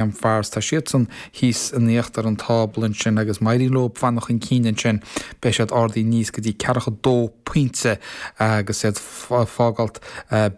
am Forest, tá siadsan thíos in íochtar an tábla ansin agus má éiríonn leo fanacht chun cinn ansin beidh siad ardaithe aníos go dtí ceathracha a dó pointe agus iad ag fágáilt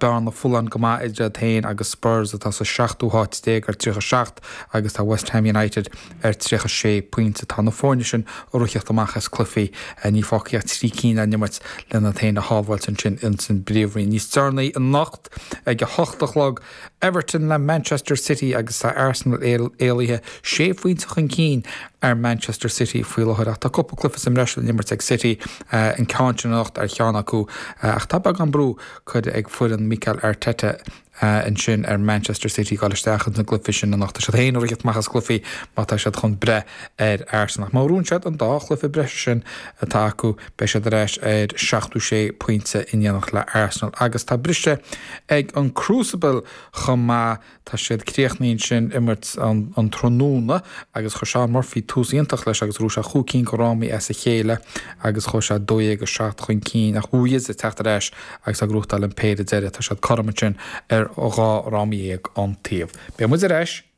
bearna folláin go maith idir iad féin agus Spurs atá sa seachtú háit déag ar tríocha seacht agus tá West Ham United ar tríocha sé pointe. Tá na foirne sin ag ritheacht amach as cluichí, níl fágtha ach trí cinn á n-imirt len iad féin a shábháilt ansin insan bpríomhroinn. Níos deireanaí anocht ag a hocht a chlog, Everton le Manchester City agus tá Arsenal éalaithe sé phointe chun cinn ar Manchester City faoi láthair ach tá cúpla cluiche sa mbreis le n-imirt ag City, an ceann sin anocht ar cheann acu, ach tá beagán brú curtha ag foireann Mikel Arteta ansin ar Manchester City dul isteach insan gcluife sin anocht. Tá siad féin ag ritheacht amach as cluichí má tá siad chun breith ar Arsenal ach má ghnóthaíonn siad an dá chluiche breise sin atá acu, Beidh siad ar ais ar seachtó sé pointe in éineacht le Arsenal agus tá briseadh ag an Crucible chomh maith. Tá siad críochnaithe ansin imirt an tráthnóna agus chuir Shaun Murphy tús iontach leis agus ghnóthaigh sé chúig cinn de fhrámaí as a chéile agus chuaigh sé 12-7 chun cinn ach Wu Yize ag teacht ar ais agus ag gnóthachtáil an péire deiridh. Tá siad cothrom ansin ar dhá fhráma dhéag an taobh. Beidh muid ar ais.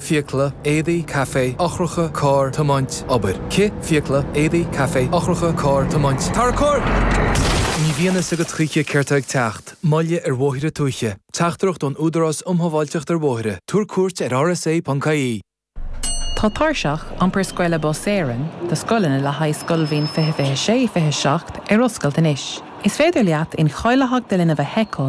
fiacla, éadaí, caife, eochracha, carr, tiomáint, obair, cith, fiacla, éadaí, caife, eochracha, carr, tiomáint, tarracóir! Ní bhíonn fhios agat choíche céard tá ag teacht, moilligh ar bhóithre tuaithe. Teachtaireacht ón Údarás Um Shábháilteacht ar Bhóithre, tabhair cuairt ar rsa.ie! Tá tairseach iompair scoile Bus Éireann do scoileanna le haghaidh scoilbhliain 2026, 27 ar oscailt anois. Is féidir leat incháilitheacht do linbh a sheiceáil